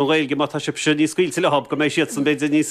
An Ghaeilge, má tá sibhse níos scaoilte leo, go mbeidh siadsan, b'fhéidir, níos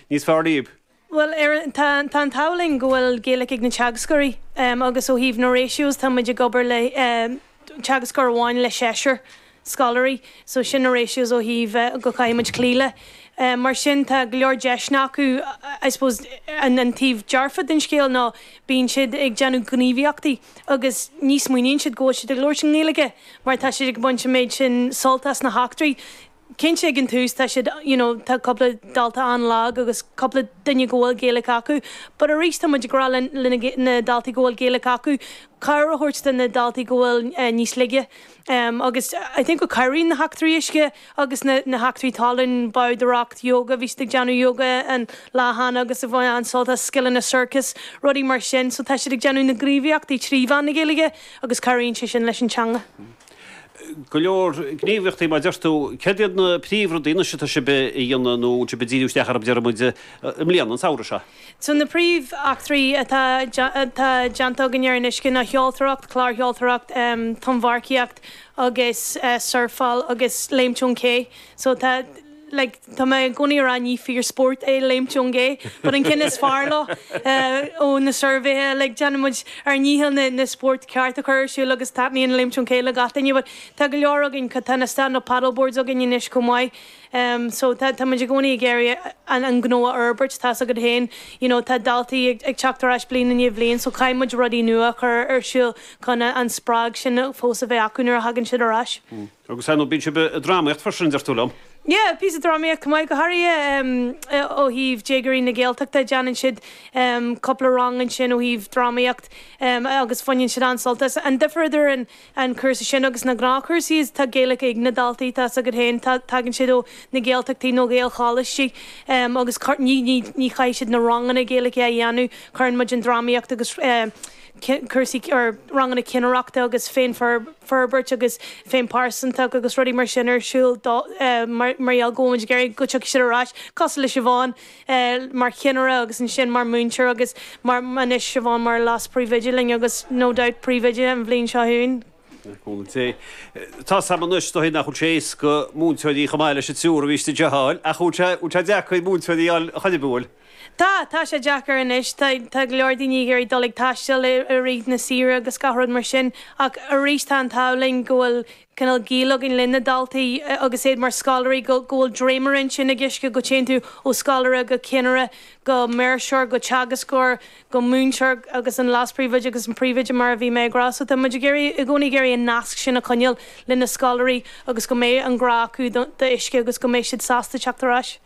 níos fearr libh. Bhuel, ar tá an t-ádh linn go bhfuil Gaeilge ag na teagascóirí agus ó thaobh na ratios tá muid ag obair le teagascóir amháin le seisear scoláirí so sin na ratios ó thaobh go caithfidh muid cloí le. Mar sin tá go leor deiseanna acu I suppose an taobh dearfa den scéal ná bíonn siad ag déanamh gníomhaíochtaí agus ní smaoiníonn siad go bhfuil siad ag labhairt i nGaeilge mar tá siad ag baint an méid sin sult as na heachtraí. Cinnte ag an tús tá siad, you know, tá cúpla dalta an-lag agus cúpla duine go bhfuil Gaeilic acu but arís tá muid ag rá le na daltaí go bhfuil Gaeilic acu, cabhair a thabhairt do na daltaí go bhfuil níos laige agus I think go cabhraíonn na heachtraí uisce Agus na heachtraí talún, bádóireacht, yoga, bhí siad ag déanamh yoga an lá cheana agus ag baint an-sult as scileanna sorcas, rudaí mar sin. So tá siad ag déanamh na gníomhaíochtaí trí mheán na Gaeilge agus cabhraíonn sé sin leis an teanga. Go leor gníomhaíochtaí mar a deir tú. Céard iad na príomhrudaí, anois atá sibh a dhéanamh nó a bhfuil sibh ag díriú isteach orthu, déarfaidh muid, i mbliana, an samhradh seo? So na príomheachtraí atá déanta againn ar an uisce ná seoltóireacht, clársheoltóireacht, tonnmharcaíocht, agus surfáil agus léimt ón ché so tá like tá mé i gcónaí a rá ní fíor spórt é léimt ón gcé but an ceann is fearr leo ó na suirbhéithe like déanann muid ár ndícheall na na spóirt cearta a chur ar siúl agus taitníonn léimt ón ché le gach duine but tá go leor againn tá na stand up paddle boards againn anois chomh maith em so tá tá muid i gcónaí ag iarraidh an an gnó a fhorbairt tá's agat féin you know tá daltaí ag ag teacht ar ais bliain i ndiaidh bhliain so caithfidh muid rudaí nua a chur ar siúl chun an spreag sin fós a bheith acu nuair a thagann siad ar ais. Hm. Agus ar ndóigh bíonn sibh ag drámaíocht freisin, deir tú liom? Yeah, píosa drámaíocht chomh maith, go háirithe ó thaobh déagóirí na Gaeltachta, déanann siad cúpla rang ansin ó thaobh drámaíocht agus bhaineann siad an-sult as. An difear idir an cúrsa sin agus na gnáthchúrsaí is tá Gaeilge ag na daltaí, tá 's agat féin, tagann siad ó na Gaeltachtaí nó Ghaelcholáistí agus ní chaithfidh siad na ranganna Gaeilge a dhéanamh, cuireann muid an drámaíocht agus. cúrsaí or ranganna cinnireachta agus féinfhorbairt agus féinphearsantacht agus rudaí mar sin ar siúl dóibh mar mar gheall go bhfuil muid ag iarraidh go tiocfaidh siad ar ais cosúil le Siobhán mar chinnire agus ansin mar múinteoir agus mar anois Siobhán mar leas-príomhoide linn agus no doubt príomhoide an bhliain seo chugainn. Contae. Tá 's a'm anois, is dóigh nach bhfuil sé éasca múinteoirí chomh maith leis an triúr a bhí istigh a fháil ach an bhfuil sé an bhfuil sé deacair múinteoirí a fháil a choinneadh, an bhfuil? Tá, tá sé deacair anois, tá, tá go leor daoine ag iarraidh dul ag taisteal i, i rith na saoire agus gach rud mar sin ach arís tá an t-ádh linn go bhfuil cineál gaol againn le na daltaí agus iad mar scoláirí go, go bhfuil dréimire ansin ag Uisce go dtéann tú ó scoláire go cinnire go maoirseoir go teagascóir go múinteoir agus an leaspríomhoide agus an príomhoide mar a bhí mé ag rá so tá muid ag iarraidh, i gcónaí ag iarraidh an nasc sin a choinneáil le na scoláirí agus go mbeidh an grá acu do, do Uisce agus go mbeidh siad sásta teacht ar ais.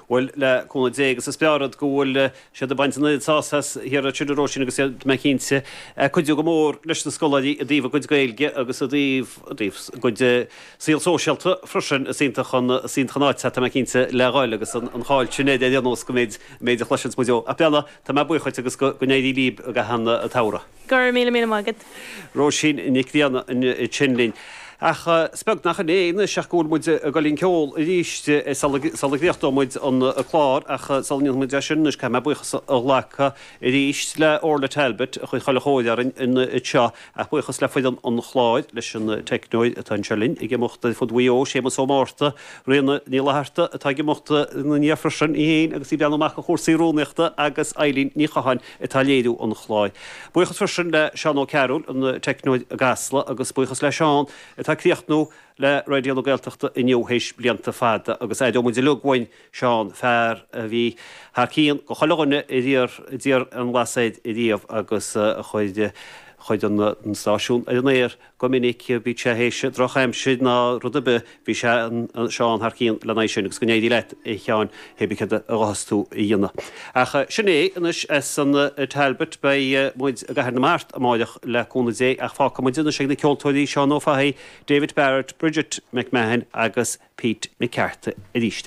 Bhuel, le cúnamh Dé agus a spiorad, go bhfuil siad ag baint an oiread sásaimh as thiar ansiúd, a Róisín, agus iad, tá mé cinnte, ag cuidiú go mór leis na scoláirí i dtaobh a gcuid Gaeilge agus i dtaobh, i dtaobh a gcuid saol sóisialta freisin. Is iontach an, is iontach an áit é, tá mé cinnte, le dhul agus an, an cháil sin ar aon nós go méid, an méid a chloiseanns muid ó. Ach, bhuel, tá mé buíoch dhuit agus go, go n-éirí libh i gcaitheamh an tsamhraidh. Go raibh míle, míle maith agat. Róisín Nic Grianna ansin linn. Ach is beag nach in é anois ach go bhfuil muid ag dul i gceol arís sula gcríochnóidh muid an clár ach sula ndéanfaidh muid é sin anois caithfidh mé buíochas a ghlacadh arís le Orla Talbot a chuir chuile chóir orainn anseo ach buíochas le foireann an chláir, leis an teicneoir atá anseo linn ag imeacht ar fud Mhaigh Eo, Séamus Ó Márta, Ríona Ní Fhlatharta atá ag imeacht ina ndiaidh freisin, í fhéin agus í ag breathnú amach ar chúrsaí rúnaíochta agus Eilín Ní Chatháin. atá ag léiriú an chláir. Buíochas freisin le Seán Ó Cearúil, an teicneoir i gCasla, agus buíochas le Seán, atá ag críochnú le Raidió na Gaeltachta inniu théis blianta fada, agus aireoimid uilig uainn Seán, fear a bhí thar cionn do chuile dhuine ar iarr, d'iarr aon eolas air riamh agus a chuir chuir an stáisiún ar an aer. Go minic bíodh sé théis drochaimsir ná rud ar bith, bhí sé, Seán thar cionn lena aghaidh sin, agus go n-éirí leat, a Sheáin, hé bith céard a ghabhfas tú a dhéanamh. Ach sin é anois as an Talbot, beidh muid i gCathair na Mart amáireach le cúnamh Dé, ach fágfaidh muid anois ag na ceoltóirí, Seán Ó Fathaigh, David Barrett, Bridget McMahon agus Pete McCarthy arís.